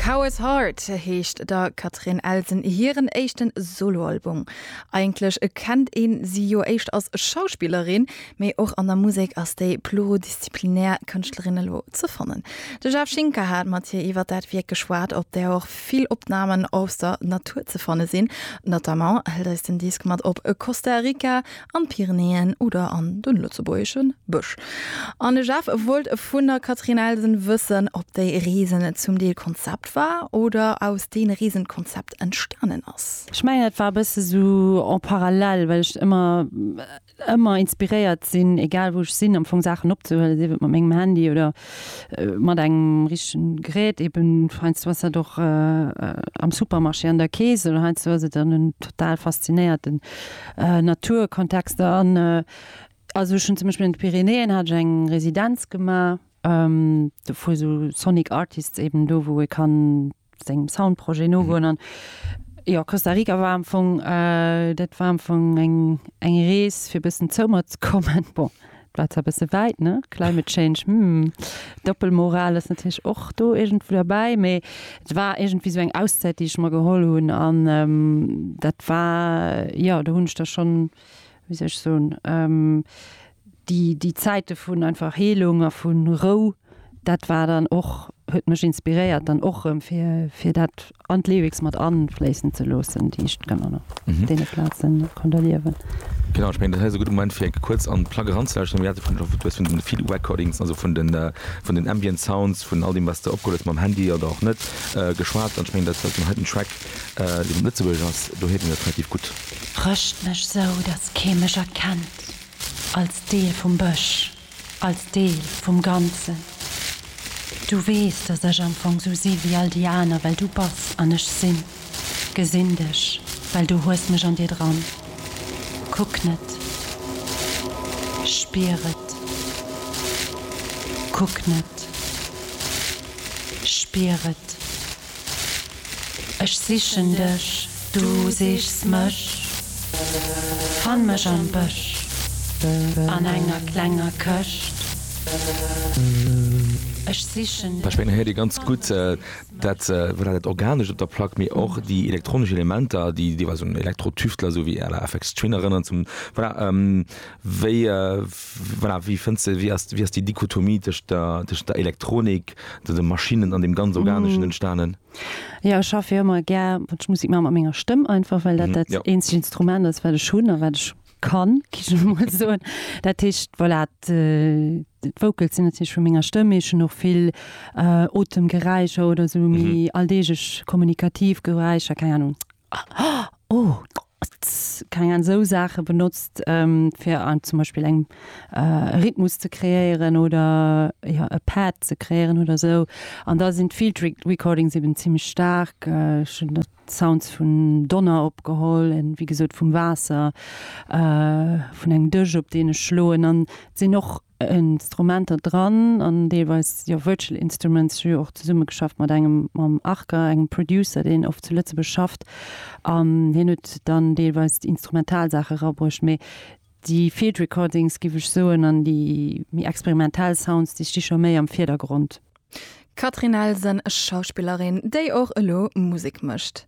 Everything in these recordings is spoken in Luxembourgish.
Coward Heart heescht der Catherine Elsen hiren éischten Soloalbum. Eigentlech kennt ee si jo éischter als Schauspillerin, mee och an der Musek ass déi pluridisziplinär Kënschtlerin elo ze fannen. De Jeff Schinker hat mat hir iwwer dat Wierk geschwat, op där och vill Opnamen aus der Natur ze fanne sinn. Notamment hëlt eis den Disk mat op Costa Rica an d'Pyrenäen oder an den lëtzebuergeschen Bësch. An de Jeff wollt vun der Catherine Elsen wëssen, ob déi Reesen zum Deel Konzept war oder aus deene Reesen d'Konzept entstanen ass. Ech mengen et war e bësse esou en parallèle, well ech ëmmer ëmmer inspiréiert sinn, egal wou ech sinn, am Fong Saachen opzehuelen, sief et mat mengem Handy oder mat engem richtegen Gerät, eben heiansdo ass dat och am Supermarché an der Kees oder heiansdo ass et dann en total faszinéierten Naturkontext. An also ech hunn zum Beispill an de Pyrenäen hat ech eng Residenz gemaach, wou esou Sonic Artists eben do wou ee kann sengem Soundprojet nogoen an jo, Costa Rica war am Fong, äh, dat war am Fong eng, eng Rees fir bëssen zoumer ze kommen. Bon, dat war zwar bësse wäit, ne, Climate Change, hm, Doppelmoral ass natierlech och do iergendwou derbäi, mee et war iergendwéi esou eng Auszäit, déi ech mer geholl hunn an dat war, jo, do hunn ech da schonn, wéi soll ech soen, déi, déi Zäite vun einfach Heelung a vu Rou, dat war dann och, huet mech inspiréiert dann och erëm fir, fir dat an d'Lyrics mat afléissen ze loossen, déi ech dann an deene Plaze konnt erliewen. Genau, ech mengen, dat hei ass e gudde Moment, fir enke kuerz an d'Plack eranzelauschteren. Mir hate vun, du hues vun den Field Recordings, also vun den, vun den Ambient Sounds, vun all deem, wat s de opgeholl hues mam Handy oder och net, geschwat. An ech mengen, dat war den heiten Track. Den Lëtzebuergesch ass doheem jo net relativ gutt. Rëscht mech sou, dass kee mech erkennt, als Deel vum Bësch, als Deel vum Ganzen. Du weess, dass ech am Fong sou si wéi all déi aner, well du bass an ech sinn. Gesinn dech, well du hues mech an dir dran. Kuck net. Spier et. Kuck net. Spier et. Ech sichen dech, du sichs mech. Fann mech am Bësch an enger klenger Këscht. Ech sichen dech. Ech mengen, der héiert ee ganz gutt dat, wat dat Organescht op der Plack, mee och déi elektronesch Elementer, déi deelweis un Elektro-Tüftler esou wéi à la Aphex Twin erënneren zum, voilà. Wéi, voilà, wéi fënns de, wéi ass, wéi ass déi Dichotomie tëscht der, tëscht der Elektronik, de, de Maschinnen an deem ganz Organeschen entstanen? Jo, ech schaffe jo ëmmer gär, wann ech Musek maachen, mat menger Stëmm einfach, well dat dat Jo. eenzegt Instrument ass, wat ech hunn a wat ech kann, gi ech elo mol soen. Dat heescht, voilà, d', d'Vocals sinn natierlech vu menger Stëmm, mee ech hunn och vill Otemgeräischer oder esou méi alldeeglech kommunikativ Geräischer, keng Ahnung, Oh, tss, keng Ahnung, esou Saache benotzt, fir an zum Beispill eng Rhythmus ze kreéieren oder jo e Pad ze kreéieren oder esou. An da sinn d'Field Recordings eben zimmlech staark. Ech hunn der d'Sounds vun Donner opgeholl, en wéi gesot vum Waasser, vun engem Dësch op deen ech schloen. An et sinn och Instrumenter dran an deelweis jo virtual instruments. Ech hu jo och zesumme geschafft mat engem, mam Arca, engem Producer, deen oft zu Lëtzebuerg schafft an hien huet dann deelweis déi instrumental Saache erabruecht. Mee déi Field Recordings, géif ech soen, an déi méi experimentell Sounds, déi sti scho méi am Virdergrond. D'Catherine Elsen, Schauspillerin, déi och elo Musek mécht.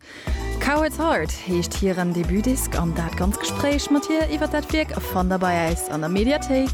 Cowherd's Heart heescht hiren Debutdisque an dat ganz Gespréich mat hir iwwer dat Wierk fannt der bei äis an der Mediathéik.